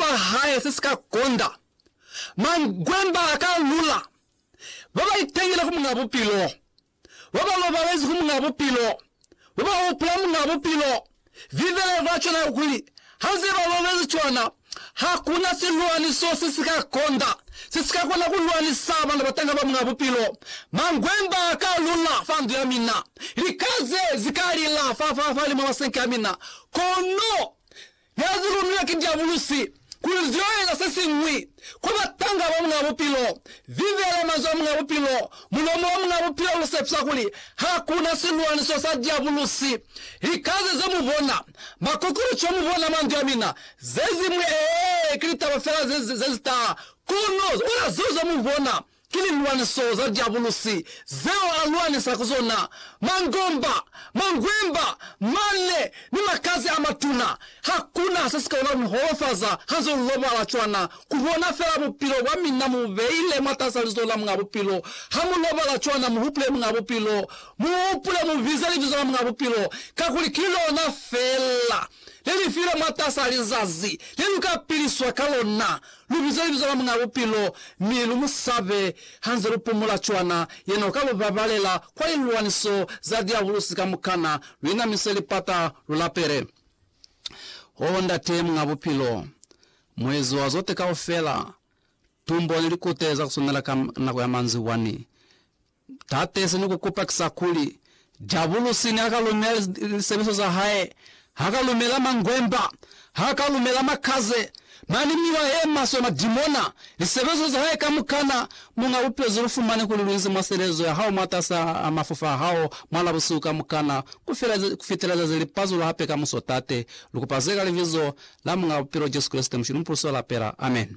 sicaba hae se si ka konda, mangwemba a ka lula, ba ba itangile ku Muñaa Bupilo, ba ba lobalezi ku Muñaa Bupilo, ba ba hupula Muñaa Bupilo, vivele kwa cwana ku kuli, ha nze ba lobezi cwana, ha ku na silwaniso se si ka konda se si ka kona ku lwanisa bana ba tanga ba Muñaa Bupilo. Mangwemba a ka lula fa ndu ya mina, lika ze zi ka lila fa, fa, fa limwa masenke a mina, kono Ya zi lumilwe ki Diabulusi kuli zi yo eza se siñwi, kwa batanga ba Muñ'a Bupilo. Vivela manzwi a Muñ'a Bupilo. Mulomo wa Muñ'a Bupilo lu sepisa kuli ha ku na silwaniso sa Diabulusi. Likaze ze mu bona, makokoloco mu bona manzwi a mina, ze zimwi, ee, ki litaba fela ze, ze, ze zi taha. Kono, ona zeo ze mu bona. Ki lilwaniso za Diabulusi zeo a lwanisa ku zona, mangomba, mangwemba, manne, ni makazi a matuna. Hakuna se si ka kona ku mi holofaza ha nze lu lobala cwana, ku bona fela bupilo bwa mina mu bu beile mwatas'a lizo la Muñ'a Bupilo. Ha mu lobala cwana, mu hupule Muñ'a Bupilo. Mu hupule, mu bize libizo la Muñ'a Bupilo, kakuli ki lona fela le li filwe mwatas'a lizazi le lu ka piliswa ka lona, lu bizwe libizo la Muñ'a Bupilo, mi lu mu sabe ha nze lu pumula cwana yena o ka lu babalela kwa lilwaniso za diabulusi kamukana, lu inamise lipata, lu lapele. Oh, Ndate Muñ'a Bupilo, Muezi wa zote kaufela, tumbo ni likute za ku swanela ka nako ya manzibwa ni Tate, se ni ku kupa ki sa kuli, Diabulusi ne a ka lumela lisebeliswa za hae, ha ka lumela mangwemba, ha ka lumela makaze, mane miwa ye maswe, madimona, lisebeliswa za hae kamukana, Muñ'a Bupilo, ze lu fumane kuli lu inzi mwa selezo ya hao mwatas'a mafufa a hao mwa la busihu kamukana, ku fitela zazi li pazulwa hape kamuso, Tate, lu kupa ze ka Libizo la Muñ'a Bupilo Jesu Kreste, Mushili Mupuluswa Lapela. Amen.